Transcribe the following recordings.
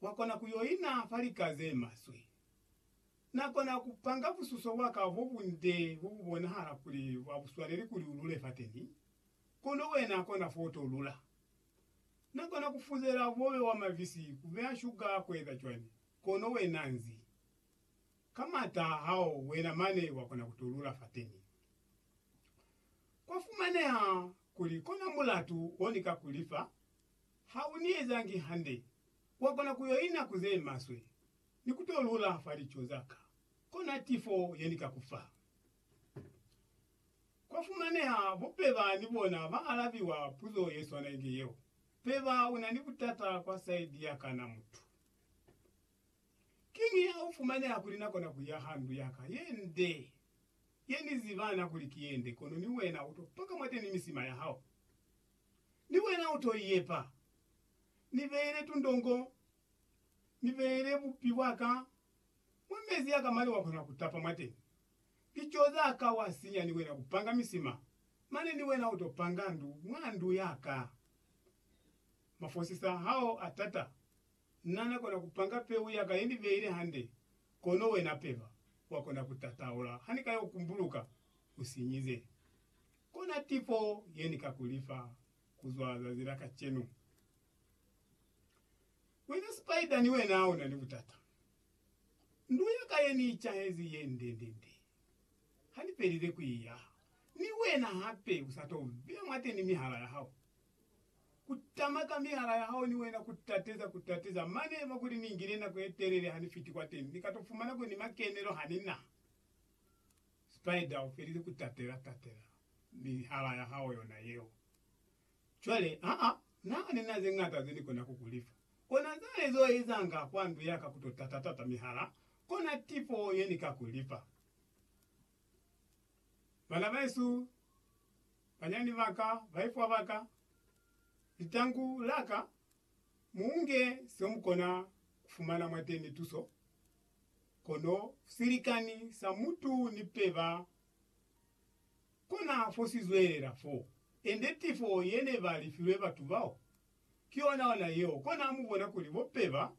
Wakona ku yo ina fa lika ze maswe. Na kona ku panga bususo bwa ka bo bunde bo bu bonahala kuli bwa buswaneli kuli u lule fateni, kono wena kona fo to lula. Na kona ku fuzela bobe bwa mabisi, ku beya shuga, ku eza cwani, kono wena nzi. Ka m'ata hao wena mane wa kona ku to lula fateni. Kwa fumaneha kuli kona mulatu o ni ka ku li fa, Ha u ni ezangi hande, wa kona ku yo ina ku ze maswe ni ku to lula fa lico za ka, kona tifo ye ni ka ku fa. Kwa fumaneha bo Peba ni bona ba alabiwa puzo ye swana inge yeo, Peba, u na ni butata kwa saidi ya ka na mutu. Kiñi ha u fumaneha kuli na kona ku ya ha ndu ya ka ye nde, ye ni ziba na kuli ki ye nde, kono ni wena u to paka mwateni misima ya hao? Ni wena u to iyepa. Ni beele tundongo, ni beele bupi bwa ka mwa mezi a ka mane wa kona ku tapa mwateni. Lico za ka wa sinya ni wena u panga misima, mane ni wena u to panga ndu mwa ndu ya ka. Mafosisa hao a tata. Na na kona ku panga peu ya ka ye ni beile hande, kono wena peba wa kona ku tataula ha ni ka yo kumbuluka u sinyize. Kona tipo ye ni ka ku lifa kuzwa zazi la kacenu. Wena Spider ni wena una ni butata. Ndu ya ka ye ni icahezi ye ndendende. Ha ni pelile ku i yaha, ni wena hape u sa to beya mwateni mihala ya hao. Ku tama ka mihala ya hao ni wena ku tateza, ku tateza. Mane eba kuli ni ngile nako ye telele ha ni fiti kwateni, ni ka to fumana kuli ni makenelo ha ni na. Spider u felile ku tatela tatela mihala ya hao yona yeo. Cwale, aa, Na ni na ze ñata ze ni kona ku ku lifa. Kona zale zo ezanga kwa ndu ya ka ku to tata tata mihala, kona tifo ye ni ka ku lifa. Bana besu, banyani ba ka, baifwa ba ka, litangu la ka, Munge se mukona kufumana mwateni tuso, kono silikani sa mutu ni peba kona fo si zwelela fo. Ende tifo yene ba lifilwe batu bao, ki yona ona yeo. Kona mubona kuli bo peba,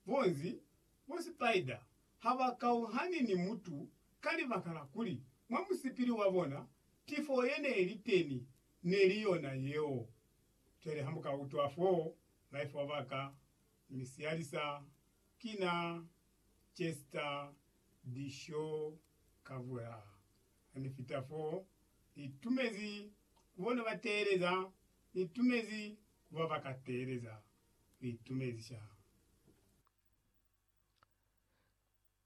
bo nzi, bo sipaida ha ba kauhani ni mutu ka libaka la kuli mwa musipili wa bona tifo yene ili teni neli yona yeo. Cwale ha muka utwa fo, life wa baka, mi sialisa, kina Chester Dishaw Kavula. Ha ni fita fo, ni tumezi ku bona ba teeleza, ni tumezi ku ba ba ka teeleza. Ni tumezi shame.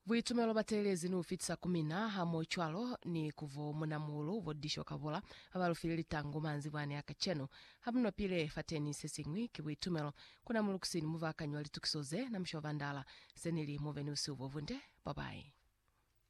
Buitumelo ba teelezi ni u fitisa ku mina, hamohocwalo ni ku bo munamuhulu bo Disho Kabula, ba ba lu file litangu manzibwani a kacenu. Ha mu nopile fateni, se siñwi ki buitumelo. Ku na mulukusi ni mubaakanyi wa litukiso ze na, Mushoba Ndala. Se nili, Mu be ni busihu bo bunde. Bye-bye.